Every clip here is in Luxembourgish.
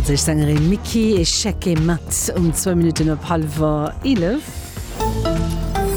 D'franséisch Sängerin Micky et Chèque mat um zwou Minutten op hallwer eelef.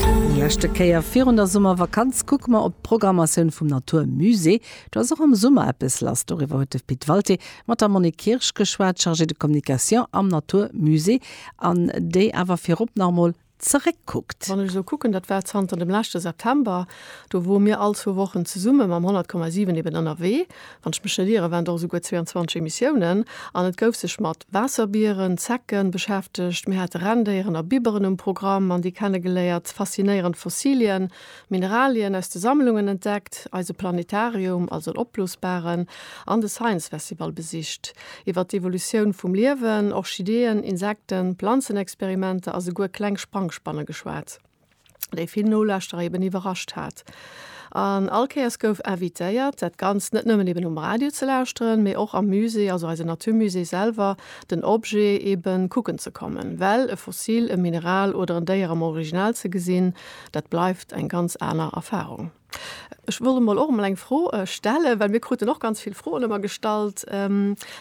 Eng leschte Kéier virun der Summervakanz kucke mer op d'Programmatioun vum Natur Musée. Do ass och am Summer eppes lass, doriwwer huet de Pit Walté mat der Monique Kirsch geschwat, Chargée de Communication am Natur Musée, an déi awer virop nach emol zeréckkuckt. Wann ech esou kucken, dat war zanter dem leschte September, do wore mir all zwou Wochen zesumme mam 100,7 eben ënnerwee, wann ech mech net iere, waren et och esouguer 22 Emissiounen. An et gouf sech mat Waasserbieren, Zecken, beschäftegt, mir hate Rendéieren a Biberen um Programm an déi kennegeléiert, faszinéierend Fossilien, Mineralien aus de Sammlungen entdeckt, eise Planetarium, also en opblosbaren, an de Science Festival besicht. Iwwer d'Evolutioun vum Liewen, Orchideeën, Insekten, Planzenexperimenter a souguer kleng Sprangspanne geschwat, déi vill Nolauschterer eben iwwerrascht hat. An all Kéiers gouf invitéiert, dat Ganzt net nëmmen eben um Radio ze lauschteren, mee och am Musée, also eise Natur Musée selwer, den Objet eben kucken ze kommen. Well e Fossil, e Mineral oder en Déier am Original ze gesinn, Dat bleift eng ganz aner Erfahrung. Ech wollt emol och emol eng Fro stellen, well mir kruten och ganz vill Froen ëmmer gestallt.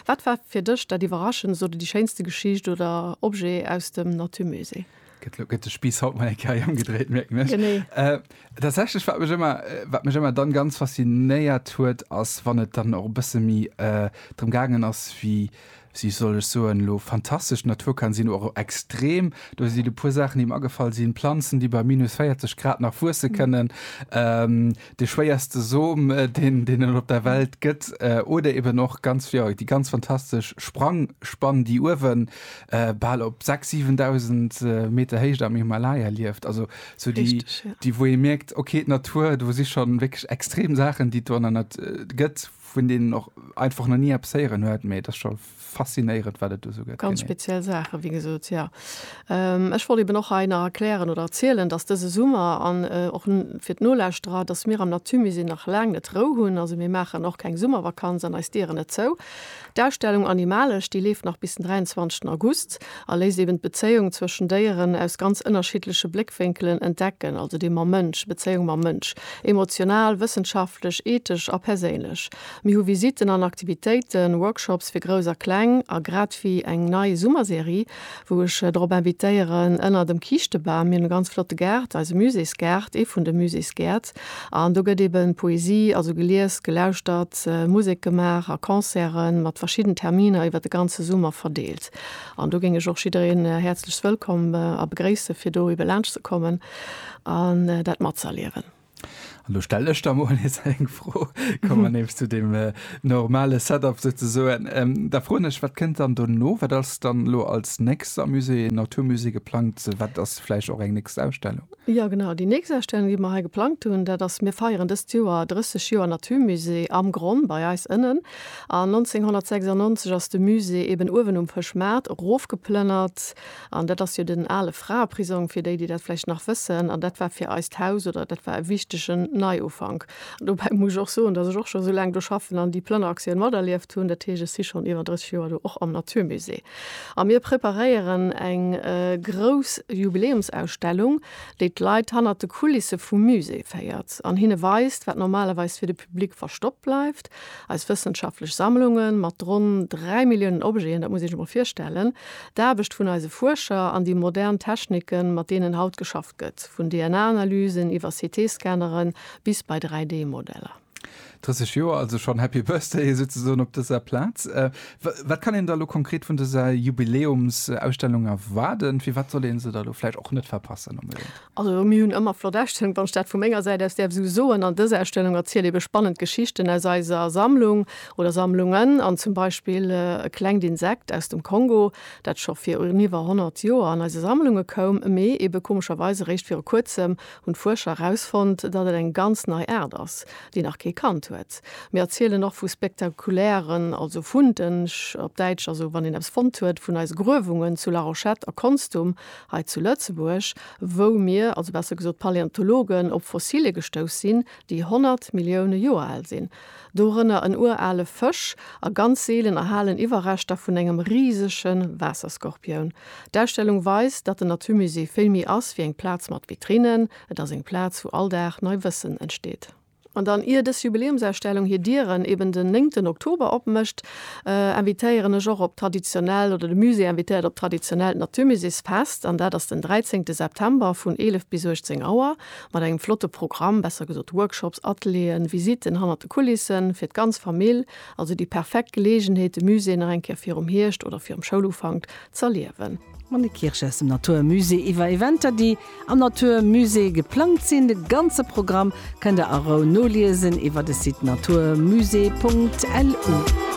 Wat war fir dech dat Iwwerraschendst oder déi schéinste Geschicht oder Objet aus dem Natur Musée? Gëtt lo gëtt de Spiiss haut mol eng Kéier ëmgedréit, mierken ech. Genee. Tatsächlech, wat mech ëmmer, wat mech ëmmer dann ganz faszinéiert huet, ass wann et dann och e bësse méi drëm gaangen ass, wéi, Wie soll ech soen elo? Fantastesch Natur kann sinn, oder extrem. Do sinn e puer Saachen, déi mer agefall sinn, Planzen, déi bei minus 40 Grad nach wuesse kënnen, de schwéierste Som, deen deen et op der Welt gëtt, oder eben och ganz, jo, déi ganz fantastesch Sprangspann, déi uewe bal op 6, 7.000 Meter Héicht am Himalaya lieft. Also sou déi, déi wou ee mierkt, okay, d'Natur, do si schonn wierklech extrem Saachen, déi et do an der Natur gëtt, vun deenen och einfach nach ni eppes héieren huet, mee et ass scho faszinéierend, wat et do esou gëtt. Ganz speziell Saachen, wéi gesot, jo. Ech wollt eben och hei nach erklären oder erzielen, dass dëse Summer, an och fir d'Nolauschterer, dass mir am Naturmusée nach laang net Rou hunn. Also mir maachen och keng Summervakanz an eis Dieren net zou. D'Ausstellung Animalesch, déi leeft nach bis den 23 August a léisst eben d'Bezéiung zwëschen Déieren aus ganz ënnerschiddleche Bléckwénkelen entdecken, also déi mam Mënsch, Bezéiung mam Mënsch, emotional, wëssenschaftlech, ethesch a perséinlech. Mir hu Visitten an Aktivitéiten, Workshops fir Grouss a Kleng a grad wéi eng nei Summerserie wou ech drop invitéieren, ënner dem Kiischtebam, mir hunn e ganz flotte Gaart, eise Muséesgaart, ee vun de Muséesgäert, an do gëtt ebe Poesie, also gelies, gelauschtert, Musek gemaach a Concerten mat verschidden Terminer iwwer de ganze Summer verdeelt. An do géing ech och jiddereen häerzlechst wëllkomm a begréisse fir do ebe laanscht ze kommen an dat matzëerliewen. An do stelle ech da mol nees eng Fro, komme mer nees zu deem normale Setup souzesoen. Da froen ech, wat kënnt dann dono? Wat ass dann elo als nächst am Musée Natur Musée geplangt? Wat ass vläicht och eng nächst Ausstellung? Jo, genau, déi nächst Ausstellung, déi mer hei geplangt hunn, dat ass, mir feieren dëst Joer 30 Joer Natur Musée am Gronn bei eis ënnen. An 1996 ass de Musée eeben uewen um Fëschmaart erofgeplënnert An dat ass jo den ale Fraeprisong, fir déi, déi dat vläicht nach wëssen. An dat war fir eist Haus oder dat war e wichtegen Neiufank. Dobäi muss ech och soen, dass ech och scho sou laang do schaffen an déi Plënneraktioun materlieft hunn. Dat heescht, ech si schonn iwwer 30 Joer do, och am Naturmusée. A mir preparéieren eng grouss Jubiläumsausstellung, déi d'Leit hannert de Kulisse vum Musée féiert an hinne weist, wat normalerweis fir de Public verstoppt bleift. Eis wëssenschaftlech Sammlunge mat ronn dräi Milliounen Objeten, dat muss ee sech emol virstellen, d'Aarbecht vun eise Fuerscher an déi modern Techniken, mat deenen haut geschafft gëtt, vun DNA-Analysen iwwer CT-Scannere bis bei 3D-Modeller. 30 Joer also schonn, Happy Birthday souzesoen op dëser Plaz. Wat kann een da lo konkret vun dëser Jubiläumsausstellung erwaarden? Firwat soll ee se da lo vläicht och net verpassen? Also mir hunn ëmmer flott Ausstellungen, wann ech dat vu menger Säit aus däerf esou soen. An dës Ausstellung erzielt eebe spannend Geschichten aus eiser Sammlung oder Sammlungen an zum Beispill e klengt Insekt aus dem Kongo, dat scho fir un iwwer 100 Joer an eise Sammlunge koum, mee eebe komescherweis eréischt viru kuerzem hunn d'Fuerscher erausfonnt, datt et eng ganz nei Aart ass, déi nach kee kannt huet. Mir erzielen och vu spektakulären, also Funde op Däitsch, also wann een eppes fonnt huet, vun eise Gruewungen zu Larochette a Konstum Hei zu Lëtzebuerg, wou mir, also besser gesot d'Paläontologen, op Fossilien gestouss sinn, déi 100 Millioune Joer al sinn, dorënner en urale Fësch a ganz seelen erhalen Iwwerreschter vun engem risege Waasserskorpioun. D'Ausstellung weist, datt den Naturmusée vill méi ass wéi eng Plaz mat Vitrinnen, et ass eng Plaz, wou all Dag nei Wëssen entsteet. An dann, ier dës Jubiläumsausstellung hir Dieren eben den néngten Oktober opmécht, invitéieren ech och op traditionellt, oder de Musée invitéiert op traditionellt Naturmuséesfest. An dat ass den dräizéngte September vun 11 bis 18 Auer mat engem flotte Programm, besser gesot Workshops, Atelieren, Visitten hannert de Kulissen, fir d'ganz Famill. Also déi perfekt Geleegenheet, de Musée nach eng Kéier virum Hierscht oder virum Schoulufank z'erliewen. Monique Kirsch aus dem Natur Musée iwwer Eventer, déi. am Natur Musée geplangt sinn. De ganze Programm kënnt der a Rou noliesen iwwer de Site naturmusée.lu.